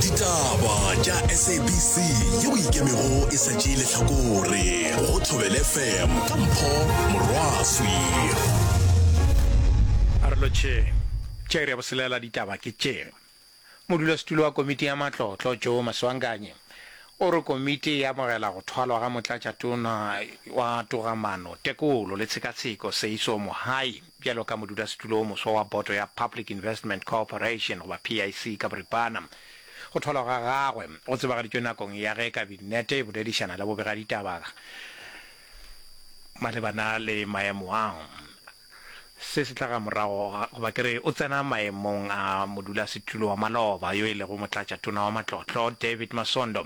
ditaba tša sabc ye o ikemego e sa tšee lehlakore go thobele fm ka mpho morwaswi a re lotšhe tša iri ya boselela ditaba ke tše modulasetulo wa komiti ya matlotlo joe maswanganyi o re komiti e amogela go thwalwa ga motlatšatona wa togamano tekolo le tshekatsheko seiso mohai Bjalo ka modulasetulo o moswa wa boto ya Public Investment Cooperation, goba PIC ka boripana, go tholwa ga gagwe go tsebagaditšwe nakong ya ge Kabinete e boledišana le bobegaditaba malebana le maemo ao. Se se tla ga morago, goba ke re o tsena maemong a modulasetulo wa maloba yo e lego Motlatšatona wa Matlotlo, David Masondo,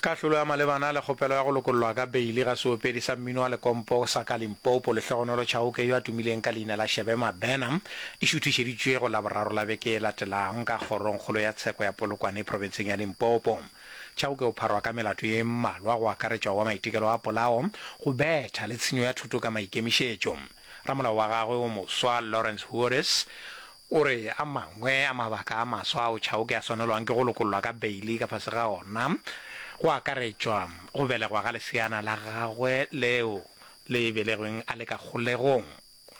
Kahlolo ya malebana le kgopelo ya go lokollwa ka beili ga seopedi sa mmino wa lekompo sa ka Limpopo Lehlohonolo Chauke yo a tumileng ka leina la Shebe Mabena e šuthišeditšwe go Laboraro la beke e latelang ka Kgorongkgolo ya Tsheko ya Polokwane profenseng ya Limpopo. Chauke o pharwa ka melato ye mmalwa go akaretšwa wa maitekelo a polao, go betha le tshenyo ya thoto ka maikemišetšo. Ramolao wa gagwe o moswa, Lawrence Huores, O re a mangwe a mabaka a maswa ao Chauke a swanelwang ke go lokollwa ka beili ka fase ga ona go akaretšwa go belegwa ga leseana la gagwe leo le belegweng a le ka kgolegong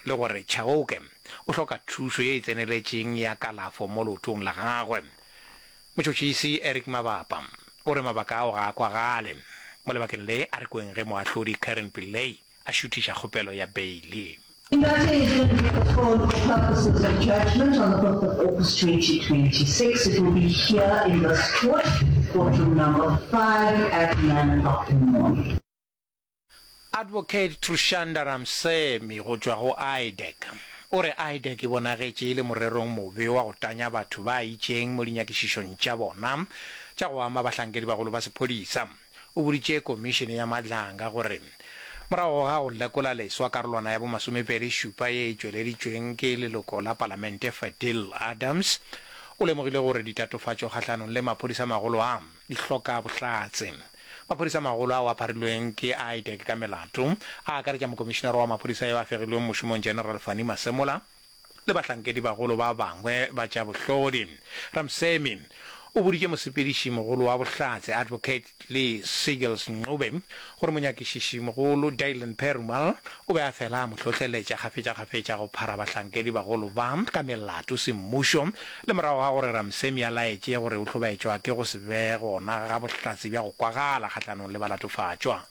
le gore Chauke o hloka thuso ye e tseneletšeng ya kalafo mo leotong la gagwe. Motšhotšhisi Eric Mabapa o re mabaka ao ga a kwagale mo lebakeng le a re kweng ge Moahlodi Karen Pillay a šuthiša kgopelo ya beile. In that case, then we put forward for purposes of judgment on the fifth of August twenty twenty six. It will be here in this court, courtroom number five, at nine o'clock in the morning. Advocate Trushanda Ramsemi go tšwa go IDEC o re IDEC e bonagetše e le morerong mobe wa go tanya batho ba itšeng mo dinyakišišong tša bona tša go ama bahlankedi bagolo ba sephodisa. o boditše Komišene ya Madlanga gore morago ga go lekola leswa karolwana ya bomasomepedi šupa ye e tšweleditšweng ke leloko la palamente Fadil Adams, o lemogile gore ditatofatšo kgahlanong le maphodisa-magolo a di hloka bohlatse. Maphodisa-magolo ao a pharilweng ke a IDEC ka melato a akaretša mokomišenare wa maphodisa yo a fegilweng mošomong General Fannie Masemola, le bahlankedibagolo ba bangwe ba tša bohlodi. Ramsamy o boditše mosepedišimogolo wa bohlatse, Advocate Lee Siegels Ncube, gore monyakišišimogolo, Dylan Perumal, o be a fela a mo hlohleletša kgafetšakgafetša go phara bahlankedibagolo ba ka melato semmušo le morago ga gore Ramsamy a laetše gore o hlobaetšwa ke go se be gona ga bohlatse bja go kwagala kgahlanong le balatofatšwa.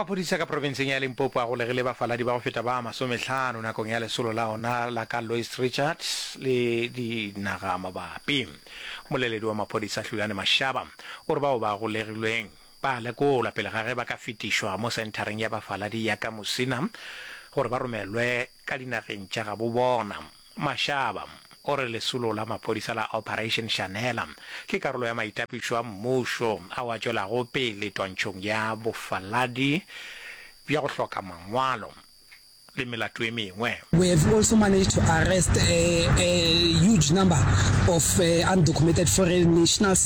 Maphodisa ka profenseng ya Limpopo a golegile bafaladi ba go feta ba masomehlano nakong ya lesolo la ona la ka Lois Richards le dinaga mabapi. Moleledi wa maphodisa Hlulane Mashaba o re bao ba golegilweng ba lekolwa pele ga ge ba ka fetišwa mo senthareng ya bafaladi ya ka Musina gore ba romelwe ka dinageng tša gabo bona. Mashaba o re lesolo la maphodisa la Operation Shanela ke karolo ya maitapišo a mmušo ao a tšwelago pele twantšhong ya bofaladi bja go hloka mangwalo le melato e mengwe. We have also managed to arrest a huge number of undocumented foreign nationals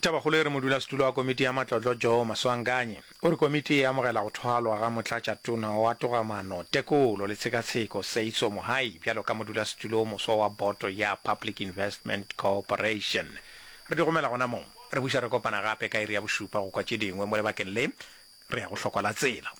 Tabakgolo e re modulasetulo wa komiti ya matlotlo Joe Maswanganyi o re komiti e amogela go thwalwa ga motlatšatona wa togamano, tekolo le tshekatsheko Seiso Mohai bjalo ka modulasetulo wo moswa wa boto ya Public Investment Cooperation. Re di gomela gona mo. Re buša re kopana gape ka iri ya bošupa go kwa tše dingwe mo lebakeng le. Re ya go hlokwa la tsela.